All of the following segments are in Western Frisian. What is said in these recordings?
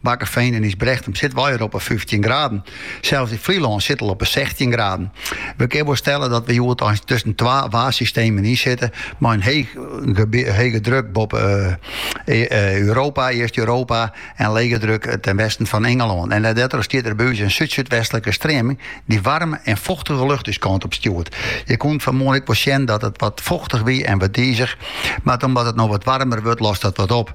Bakkefean en Ysbrechtum sitte we al op 'e fyftjin graden. Sels yn Flylân sit al op 'e sechstjin graden. We kinne wol stelle dat we hjoed eins tusken twa waarsystemen yn sitte, mei in hege druk boppe Europa, East-Europa, en lege druk ten westen fan Ingelân. En dêrtroch stiet der by ús in súd-súdwestlike streaming dy't waarme en fochtige lucht ús kant op stjoert. Je koene it fanmoarn ek wol sjen dat it wat fochtich wie en wat dizich, mar omdat it no wat waarmer wurdt lost dat wat op.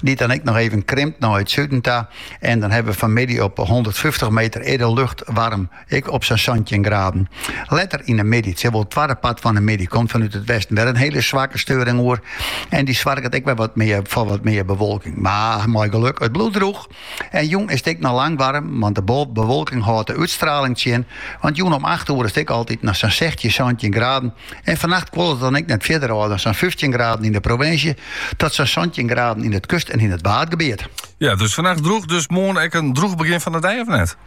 Dy't dan ek noch even krimpt nei it suden ta. En dan hawwe we fanmiddei op hûndertfyftich meter earder lucht waarm ek op sa'n santjin graden. Letter yn de middei, tsjin wol it twadde part fan de middei, komt fanút it westen wer in hiele swakke steuring oer. En dy soarget ek wer wat mear foar wat mear bewolking. Mar mei geluk, it bliuwt drûch. En jûn is it ek noch lang waarm, want de bewolking hâldt de útstraling tsjin. Want jûn om acht oere is it ek altyd noch sa'n sechstjin, santjin graden. En fannacht kuolet it dan ek net fierder ôf dan sa'n fyftjin graden yn de provinsje, tot sa'n santjin graden yn it kust en yn it waadgebiet. Ja, dus fannacht droech, dus moarn ek in droech begjin fan de dei of net?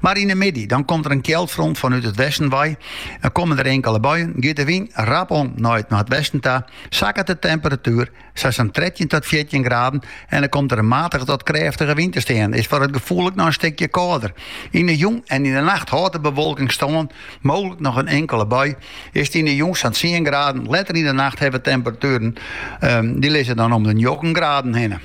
Mar yn 'e middei, dan komt der in kjildfront fanút it westen wei en komme der inkele buien, giet de wyn rap om nei it noardwesten ta, sakket de temperatuer sa sa'n trettjin tot fjirtjin graden en dan komt der in matige tot krêftige wyn te stean. Is foar it gefoel ek noch in stikje kâlder. Yn 'e jûn en yn 'e nacht hâldt de bewolking stân, mooglik noch in inkele bui. Is it yn 'e jûn sa'n tsien graden, letter yn 'e nacht hawwe we temperatueren dy lizze dan om de njoggenen graden hinne.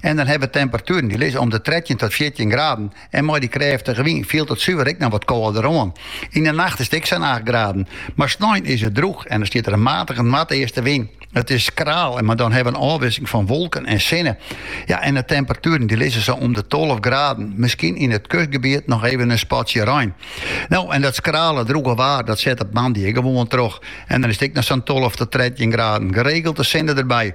En dan hawwe we temperatueren dy lizze om de trettjin tot fjirtjin graden en mei dy krêftige wyn fielt it suver ek noch wat kâlder oan. Yn 'e nacht is it ek sa'n acht graden. Mar snein is it drûch en dan stiet der in matige noardeastewyn. It is skraal, mar dan hawwe we in ôfwisseling fan wolken en sinne. Ja, en de temperatueren dy lizze sa om de tolve graden, miskien yn it kustgebiet noch even in spatsje rein. No, en dat skrale, drûge waar dat set op moandei ek gewoan troch en dan is it ek noch sa'n tolve tot trettjin graden, geregeld de sinne derby.